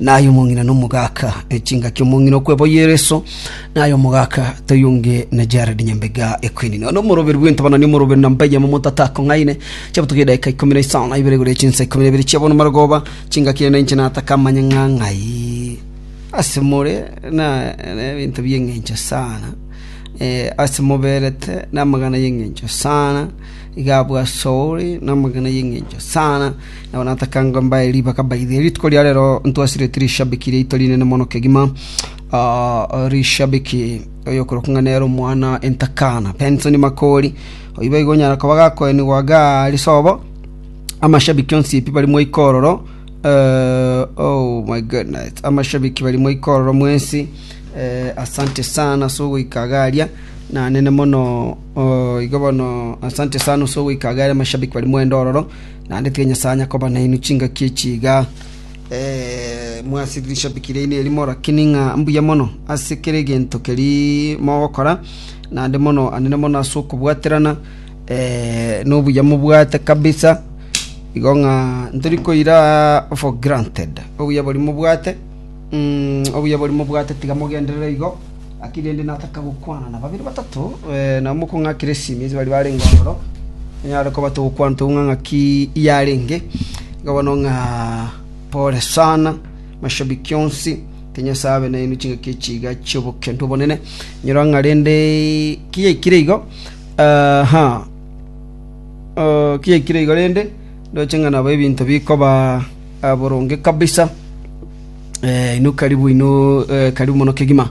na aye omong'ina nomogaka, echingaki omong'ina okweboyia ereso, na aye omogaka toi onge na Jared Nyambega Equine. Nonya omoroberi bw'entabana ni omoroberi na Mbeya momotata akong'aine, chiabutuka edaika ikomi na isano na ibere egoria chinsa ikomi na ibere chia bono marogoba, chingaki ere na inche nataka amanye ng'a ng'ai ase more na na ebinto bi'eng'encho sana, eh, ase moberete na amagana y'eng'encho sana, iga abwo ase ore na amagana y'eng'encho sana. Nabo natakanga mbae ribaga mbaidhie. Rituko ria rero ntwasire tirishabiki riaito rinene mono kegima. Ah, rishabiki oyokorokwa ng'a nere omwana entakana Benson Makori. Oyio boigo onyara koba gakoenigwa iga ase obo amashabiki onsi pi barimo ikororo. Eh, oh my goodness. Amashabiki barimo ikororo mwensi. Eh, asante sana ase ogoika iga aria. Nanene mono oh, iga bono asante sana ase ogoika iga aria amashabiki barimo endororo. Naende tiga Nyasae anya koba nainwe chingaki echi iga mwase rishabiki riaino eri morake ning'a mbuya mono ase kera egento keria mogokora, naende mono anene mono ase okobwaterana nobuya mobwate kabisa, igo ng'a ntori koira for granted obuya boria mobwate obuya boria mobwate tiga mogenderere igo. Gaki rende nataka gokwana na babere batato, namoko ng'akire esimi ase baria barenge ororo, tonyare koba togokwana togokwana ng'a ng'aki yarenge, igo bono ng'a pole sana mashabiki onsi, King Nyasaye abe nainwe chingaki echi iga chi'obokendo obonene, inyora ng'a rende ki yaikire igo aha Uh, ki yaikire igo rende ndoche ng'a nabo ebinto bikoba ah, boronge kabisa Inwe karibu, inwe eh, karibu mono kegima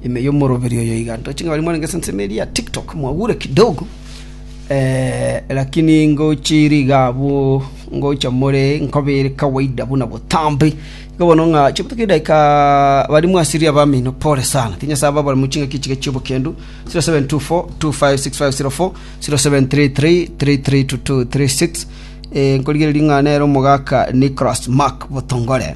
ime yomoroberi oyo iga ntoche ng'a bari mwarenge senseme eria tiktok mwagure kidogo eh, lakini ngochiri iga abwo ngocha more nkobere kawaida buna botambe iga bono ng'a chibutuka edagika bari mwasiri abamino pore sana tinyasa aba bari muchinga kichiga chiobokendu 0724 256504 0733 332236 eh, nkorigereria ng'a nere omogaka Nicholas Mark Botongore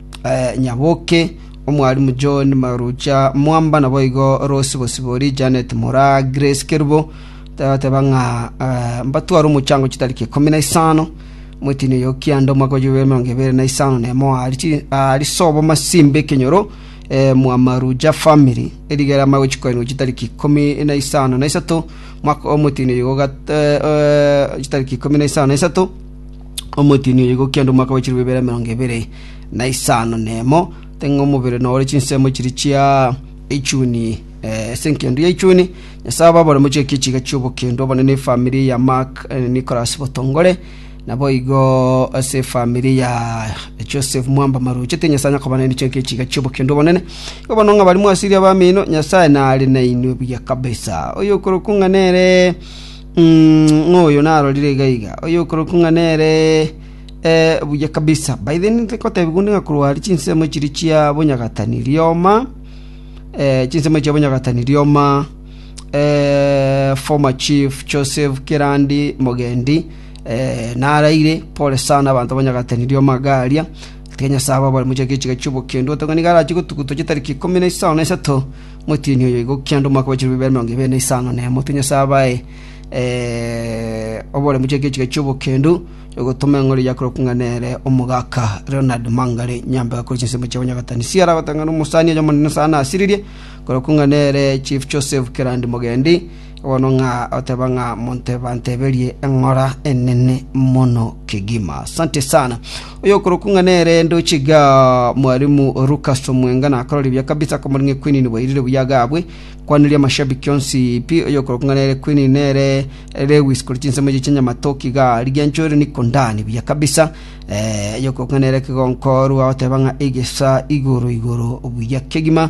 Nyaboke, Omwalimu John Marucha Mwamba, naboigo Rose Bosibori, Janet Mura, Grace Kerubo, tabateba ng'a mbatware omochango chitariki ikomi na isano. Omwetiini oyo o kianda omwaka wa yubile emerongo ebere na isano na emo aari chi- aari sobo masimba ekenyoro eh, mwa Marucha family, erigera amaya gochikoinigwa chitariki ikomi na isano na isato mwaka omwetiini oyo ogat- eh, eh, chitariki ikomi na isano na isato omotini oyio gokia ande omwaka bwe chilifu ebiere emerongo ebere na isano nemo teng'e omobere nore chinsemo chiri chia echuni eh, ase enkendo ya echuni nyasaye ababore mochiekie chiga chi'obokendo obonene efamiri ya mark eh, nicholas botongore nabo igo ase efamiri ya joseph mwamba maruche te nyasaye nyakobana nichiekie chiga chi'obokendo obonene igo bono ng'a bari mwasiria abamino nyasaye nare nainwe buya kabisa oyo okorokwa ng'a nere ng'oyo narorire iga iga, oyokorokwa ng'a nere buya kabisa. By the way, nintake gotebigwa onde ng'a korwa aria chinsemo chiria chia bonyagatani rioma, chinsemo chia bonyagatani rioma, former chief Joseph Kirandi Mogendi, naraire, pole sana abanto bonyagatani rioma iga aria, atiga Nyasae ababare mochake chiga chi'obokendo, oteba nigo arache gotuguta chintariki ikomi na isano na isato, Motienyi oyo oigwa kianda omwaka bwa chilubibera emerongo ebere na isano na emo, Tinyosa abae oboremu chia ekechiika ki'obokendu ogotoma eng'ori ya korokwa ng'a nere omogaka Leonard Mangare Nyambega kore chinsemo chia bonyagatani. Siara agotang'ana omosani oyomo Omonene Nyasae nasiririe korokwa ng'a nere Chief Joseph Kerandi Mogendi, Bono ng'a oteba ng'a monto banteberie eng'ora enene mono kegima. Asante sana. Oyo okorokwa ng'a nere ndoche ga mwalimu Lucas Omwenga nakorori bia kabisa komorenge Queen boirire buya gabwe. Kwaniria mashabiki onsi pi oyo okorokwa ng'a nere Queen nere Lewis kori chinsemo echi chinyamatoki ga ligi anchore niko ndani buya kabisa. Eh, oyo okorokwa ng'a nere kigonkorwa oteba ng'a egesa igoro igoro buya kegima.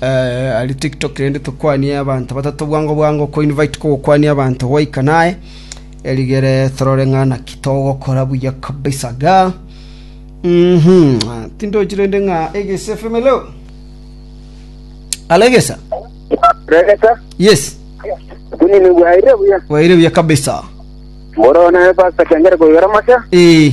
Ari tiktok rende tokwanie abanto batato bwango bwango ko invite ko gokwania abanto gwaika naye erigere torore ng'a naki togokora buya kabisa iga mhm tindochi rende ng'a egese feme leo alegesa Regeta, yes kunini bwaire buya. waire buya kabisa Moro naye pasta kengere koigera masa. eh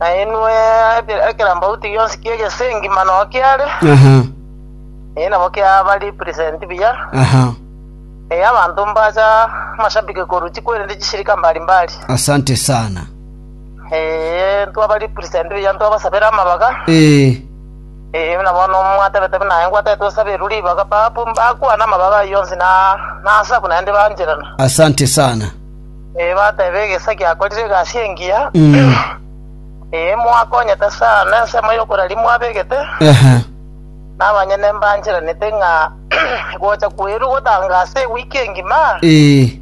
Na inwe eke- ekerambauti gionsi ki'egesengi mano kiare, Aha, eye nabo kiaba represent buya, aha. eye abanto mbacha amashabiki korwa chikwerende chisirika mbari mbari. Asante sana. Eye ntwaba represent buya ntwabasabere amabaga, Eh, eye buna bono mwatebete buna aye ngwatete tosaberwe ribaga, babu mbakwana amabaga ayio yonsi na nasaku naende bancherana. asante sana. Ee, batebe, Egesaku giakorire egasi engiya, Mm. ee, mwakonyete sana ensemo y'okoraria mwabegete, Ehe. na abanyene mbancheranete ng'a gocha kweru gotanga ase ewiki engima Ee.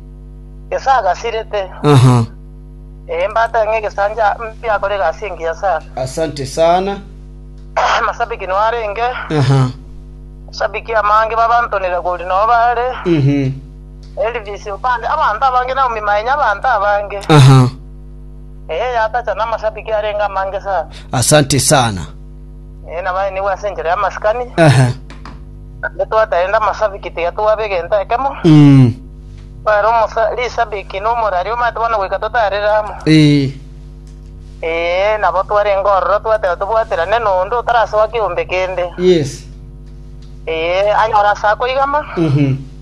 gesagasirete. Aha. Ee, mbatebe ng'a egesaku giakora egasi engiya sana. Asante sana. Amasabiki nwarenge, Aha. masabiki amange babantonire kori nao bare, Mhm. Elvis opande abanto abange Naomi maenye abanto abange Aha. ee yatacha namashabiki arenge amange sana Asante sana. ee nabaenigwe ase enchera y'amasikani Aha. ande twataende amashabiki tiga twabe egento ekemo Mm. bare omosa rishabiki na omorari omate bono goika totarire amo Eh. ee nabo twarenge ororo twateba tobwaterane nonde otarasoa kiombe kende Yes. ee anyora ase akoigama Mhm.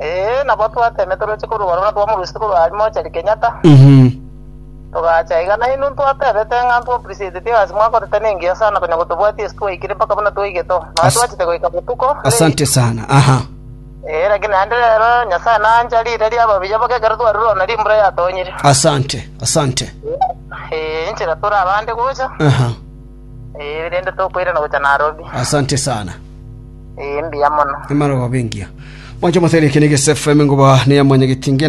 Ee, nabo twatemete oroche korwa Barura twamorusia korwa aria mochari Kenyatta, Mhm. togacha iga. Na inwe ntwatebete ng'a nto appreciateti egasi mwakorete nengiya sana konya gotobwatia ase twaikire mpaka buna twaigete oo. Nonya As- twachete goika botuko. late. Asante sana. Aha. Ee, lakini naende rero Nyasaye nancha riire ria ababiya mpaka ekero twarure ona rimbura yatonyire. Asante. Asante. Ee, inchera tore abande gocha. Aha. Eh, rende tokoirana gocha Nairobi. Asante sana. Eh, mbuya mono. Emana gobengia. Mwancho moteri kene gese FM ngoba ne ya mwanyagetinge